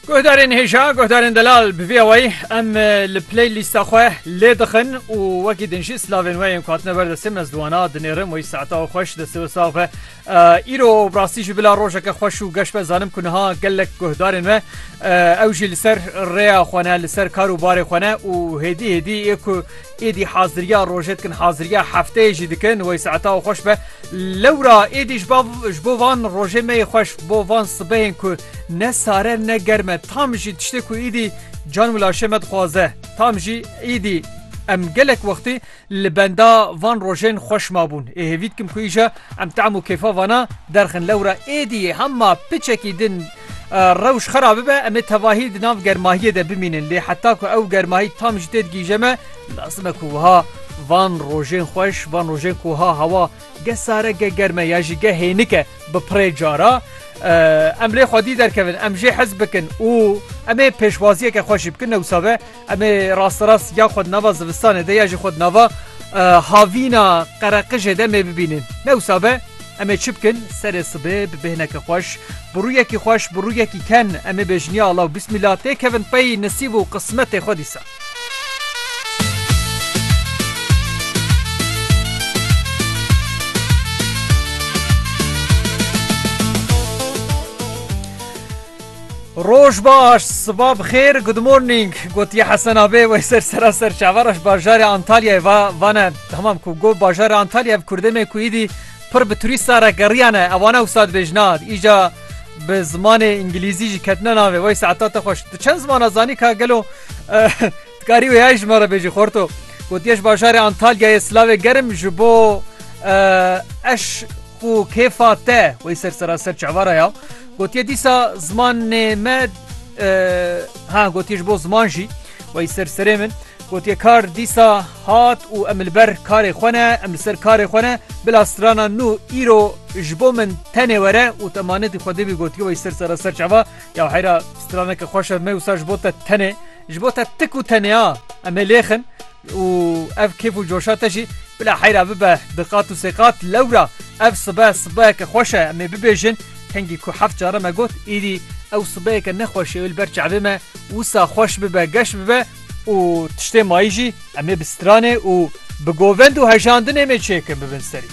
Guhdarên hêja, guhdarên delal bi vî awayî em li play lîsta xwe lê dixin û wekî din jî silavên we yên ku hatine ber destê me ziwana dinêrim wê saeta û xweş destê we sax be. Îro bi rastî jî bila rojeke xweş û geş be zanim ku niha gelek guhdarên me ew jî li ser rêya xwe ne li ser kar û barê xwe ne û hêdî hêdî ê ku Êdî haziriya rojê dikin, haziriya hefteyê jî dikin, wey saeta û xweş be. Lewra êdî ji ba ji bo van rojê me yê xweş, bo van sibehên ku ne sare ne germ e, tam jî tiştê ku êdî can û laşê me dixwaze. Tam jî êdî em gelek wextî li benda van rojên xweş mabûn. Ê hêvî dikim ku îja em tam û kêfa vana derxin. Lewra êdî hema piçekî din Rewş xera bibe em ê tevahî di nav germahiyê de bimînin lê heta ku ew germahî tam ji têdigîje me lazim e ku wiha van rojên xweş van rojên ku ha hewa ge sare ge germe ya jî ge hênike bi pirê cara em lê xwedî derkevin em jê hez bikin û em ê pêşwaziyeke xweş jî bikin ne wisa be Em ê rasterast ya xwe di nava zivistanê de ya jî xwe di nava havîna qereqijê de em ê bibînin. Ne wisa be, em ê çi bikin? Serê sibê bi bêhneke xweş, bi rûyekî xweş, bi rûyekî ken em ê bêjin ya Allah û Bismillah têkevin pey nisîb û qismetê xwe dîsa. Roj baş, siba bi xêr, good morning, gotiye Hesen Abê wey ser sera ser çavaraş bajarê Antalyayê va vane tamam ku got bajarê Antalya ev kurdê me ku îdî pir bi turîsta re geriyane ewana wisa dibêjin a îca bi zimanê îngilîzî jî ketine navê wey saeta te xweş tu çend zimana zanî ka gelo Ti karî wêyayî ji me re bêjî Xorto. Gotiye ji bajarê Antalyayê silavê germ ji bo eş û kêfa te wey ser seraser çavara ya. Gotiye dîsa zimanê me ha gotiye ji bo ziman jî wey ser serê min. Gotiye kar dîsa hat û em li ber karê xwe ne em li ser karê xwe ne bila strana nû îro ji bo min tenê were û te manetî xwedê bî gotiye wey ser seraser çava ya heyra straneke xweşe me wisa ji bo te tenê. Ji bo te tik û teneya em ê lêxin û ev kêf û coşa te jî bila heyra bibe bi qat û sêqat. Lewra ev sibe sibeyeke xweş e em ê bibêjin. Kengî ku heft care me got îdî ew sibeyeke ne xweş ê li ber çavê me wisa xweş bibe, geş bibe û tiştê mayî jî em ê bi stranê û bi govend û hejandinê mê çêkin bibin serî.